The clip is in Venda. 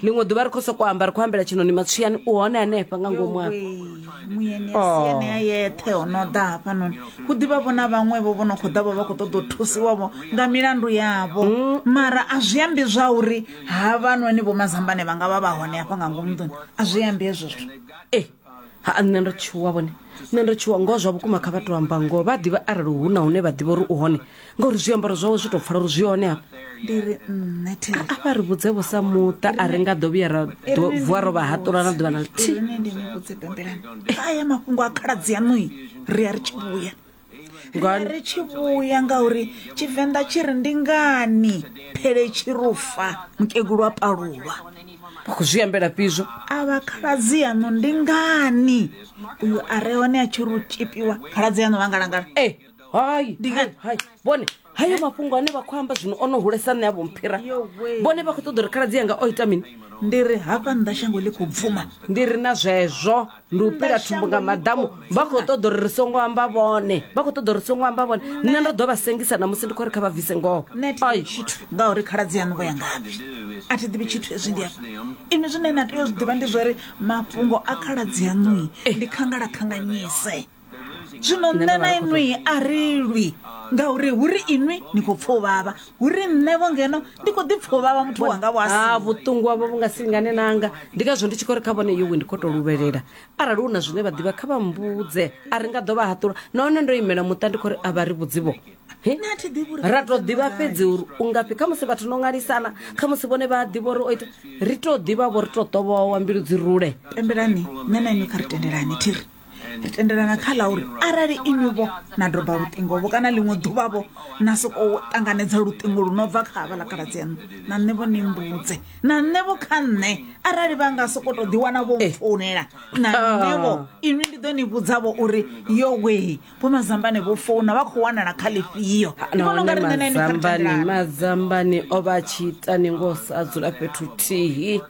ḽiṅwe ḓuvha ri khou sokou amba ri khou ambela tshinoni matswiyani u hone hanefha nga ngomu afha muyeni a si anea yeṱhe o no ḓa hafhanoni hu ḓivha vho na vhaṅwevho vho no khou ḓa vho vha khou ṱoḓa u thusiwavho nga milandu yavho mara a zwi ambi zwa uri havhanoni vho mazambane vha nga vha vha hone hafha nga ngomu nḓuni a zwi ambi hezwo zwithu ha nṋe ndo tshuwa vhone nṋe ndo tshuwa ngoho zwa vhukuma kha vhathu amba ngoho vha ḓivha arali hu na hune vha ḓivha uri u hone ngauri zwiambaro zwawe zwi tou pfala uri zwi hone hafha ndi ri nṋe theri a vha ri vhudze vho sa muṱa a ri nga ḓo vhuya ra ḓo- vuwa ro vha haṱula na ḓuvha na lithihi ine ndi ni vhudze bembelani kha ya mafhungo a khaladzi yaṋui ri ya ri tshi vhuya nga ri tshi vhuya ngauri tshivenḓa tshi ri ndi ngani phele tshi rufa mukegulu wa palulwa vha khou zwi ambela fhizwo a vha khaladzi yaṋu ndi ngani uyu a re hone a tshi ri u tshipiwa khaladzi yaṋu vha ngalangala e eh, hai ndi ngani hai vhone hayo mafhungo ane vha khou amba zwino o no hulesa nṋe a vho mphira vhone vha khou ṱoḓa uri khaladzi yanga o ita mini ndi ri hafha nnḓa shango ḽi khou bvuma ndi ri na zwezwo ndi u pila thumbu nga maḓamu vha khou ṱoḓa uri ri songo amba vhone vha khou ṱoḓa uri ri songo amba vhone nṋe ndo ḓo vha sengisa na musi ndi khou ri kha vha bvise ngoho ai tshithu ngauri khaladzi yaṋu vho ya ngafhi a thi ḓivhi tshithu hezwi ndi afha inwi zwine na tea u zwi ḓivha ndi zwori mafhungo a khaladzi yaṋui ndi khangala khanganyise zwino nṋe na inwi a ri lwi ngauri hu ri inwi ni khou pfa u vhavha hu ri nṋevho ngeno ndi khou ḓipfa u vhavha muthu wanga vho asi ha vhuṱungu havho vhu nga si lingane nanga ndi ngazwo ndi tshi khou ri kha vhone yowe ndi khou tou luvhelela arali hu na zwine vha ḓivha kha vha mbudze a ri nga ḓo vha haṱula nahone ndo imela muṱa ndi khou ri a vha ri vhudzivho He? Nṋe a thi ḓivhi uri ra tou ḓivha fhedzi uri u ngafhi kha musi vhathu no ṅwalisana kha musi vhone vha a ḓivha uri o ita ri tou ḓivha vho ri tou ṱovhowa mbilu dzi rule pembelani nṋe na inwi kha ri tendelani thiri ri tendelana kha ḽa uri arali inwi-vho na doba luṱingo-vho kana ḽiṅwe ḓuvha-vho na sokou ṱanganedza luṱingo lu no bva kha havha ḽa khaladzi yaṋu na nṋe-vho ni mbudze na nṋe-vho kha nṋe arali vha nga sokou tou ḓiwana vho eh. founela na ah. nṋe-vho inwi ndi ḓo ni vhudza-vho uri yo wee vho mazambane vho founa vha khou wanala kha ḽifhio ah, ndi vhona unga ri nṋe na inwi kha mazambane o vha tshi ita ni ngo sa dzula fhethu thihi